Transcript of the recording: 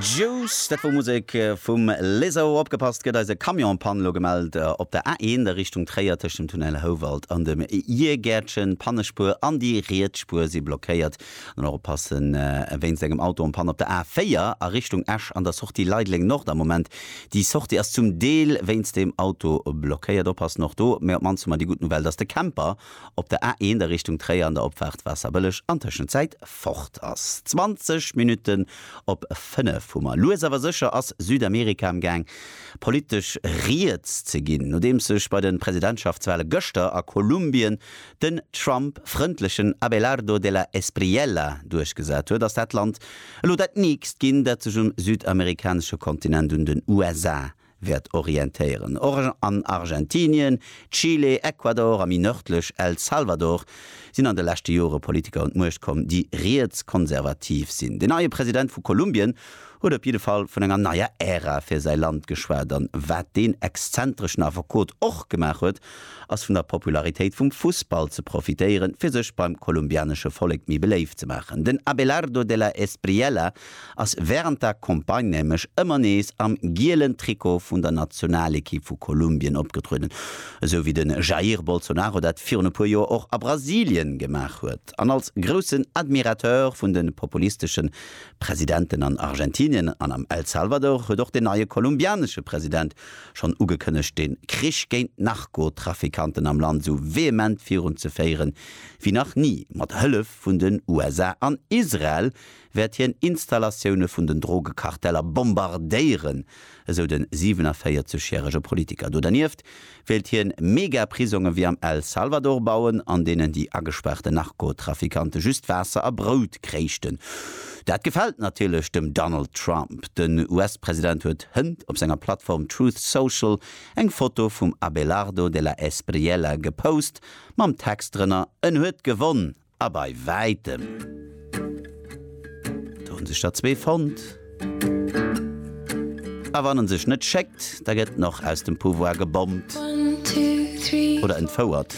Juice, dat wor Musek vum Lizzo. Opgepasst gëtt eis e Camion en Panne, elo gemellt op der A1 a Richtung Tréier tëscht dem Tunnel Houwald an dem Jiergäertchen. D'Pannespuer an déi riets Spuer si blockéiert. Dann och oppassen wéinst engem Auto en Panne op der A4 a Richtung Esch an der Sortie Leideleng Nord am Moment. Déi Sortie ass zum Deel wéinst deem Auto blockéiert. Oppassen och do, mä op d'mannst hu mer déi gutt Nouvelle, dass de Camper, op der A1 a Richtung Tréier an der Opfaart Waasserbëlleg an Tëschenzäit fort ass. 20 Minutten op 5 hu mer. Lues awer sécher ass Südamerika am Gaang politesch riets ze ginn, nodeems sech bei de Presidentschaftswale gëschter a Kolumbien den Trump-frëndlechen Abelardo de la Espriella duerchgesat huet, ass dat Land elo dat nächst ginn, dat sech um südamerikanesche Kontinent un den USA wäert orientéieren. Och an Argentinien, Chile, Ecuador a méi nërdlech El Salvador sinn an de leschte Jore Politiker un d'Muecht komm, déi rietskonservativ sinn. Den neie President vu Kolumbien huet op jidde Fall vun enger neier Ära fir säi Land geschwat. An wat deen exzentreschen Affekot och gemaach huet, ass vun der Popularitéit vum Fussball ze profitéieren, fir sech beim kolumbianesche Vollek méi beléift ze maachen. Den Abelardo de la Espriella ass wärend der Campagne nämlech ëmmer nees am gielen Trikot vun der Nationalekipp vu Kolumbien opgetrueden, esou wéi de Jair Bolsonaro dat virun e puer Joer och a Brasilien gemaach huet. An als groussen Admirateur vun de populistesche Presidenten an Argentinien an am El Salvador huet och den neie kolumbianesche President schonn ugekënnegt de Krich géint d'Narkotrafikanten am Land esou vehement virunzeféieren wéi nach ni, mat Hëllef vun den USA an Israel, wäert hien Installatioune vun den Drogekarteller bombardéieren, esou de 47 järege Politiker. Do dernieft wéilt hien Megaprisonge wéi am El Salvador bauen, an deenen déi agespaarte Narkotrafikante just Waasser a Brout kréichten. Dat gefält natierlech dem Donald Trump. Den US-President huet hënt op senger Plattform Truth Social eng Foto vum Abelardo de la Espriella gepost, mam Text drënner, En huet gewonn! A bei wäitem! Do hunn sech der zwee fonnt. A wann en sech net schéckt, da gëtt en och aus dem Pouvoir gebommt oder entfouert.